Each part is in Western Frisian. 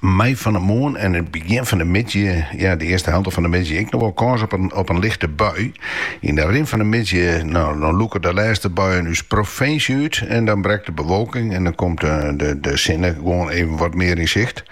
mei fan 'e moarn en it begjin fan 'e middei, ja, de earste helte fan 'e middei ek, noch wol kâns op in, op in lichte bui. Yn de rin fan 'e middei, no, dan lûke de lêste buien ús provinsje út en dan brekt de bewolking en dan komt de sinne gewoan even wat mear yn sicht.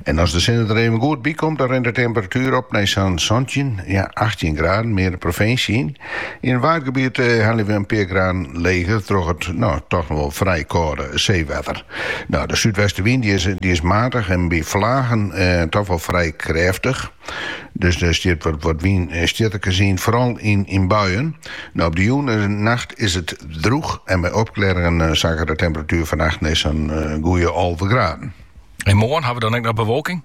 En as de sinne der even goed by komt, dan rint de temperatuer op nei sa'n santjin, ja, achttjin graden, mear de provinsje yn. Yn it waadgebiet helje we in pear graden leger troch it no toch noch wol frij kâlde seewetter. No, de súdwestewyn dy is, dy is matich en by flagen toch wol frij krêftich. Dus der wurdt wat wynstjitterkes yn, foaral yn, yn buien. No, op de jûn en nacht is it drûch en by opklearringen sakket de temperatuer fannacht nei sa'n goeie alve graden. En moarn, hawwe we dan ek noch bewolking?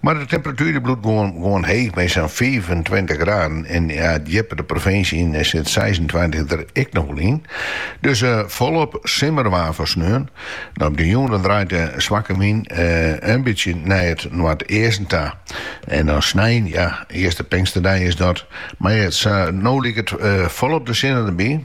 Mar de temperatuer bliuwt gewoan heech mei sa'n fiifentweintich graden en djipper de provinsje yn sit seisentweintich der ek noch wol yn. Dus folop simmerwaar foar sneon. Op de jûn dan draait de swakke wyn in bytsje nei it noardeasten ta. En dan snein, ja, earste pinksterdei is dat. Sa't no liket folop de sinne derby.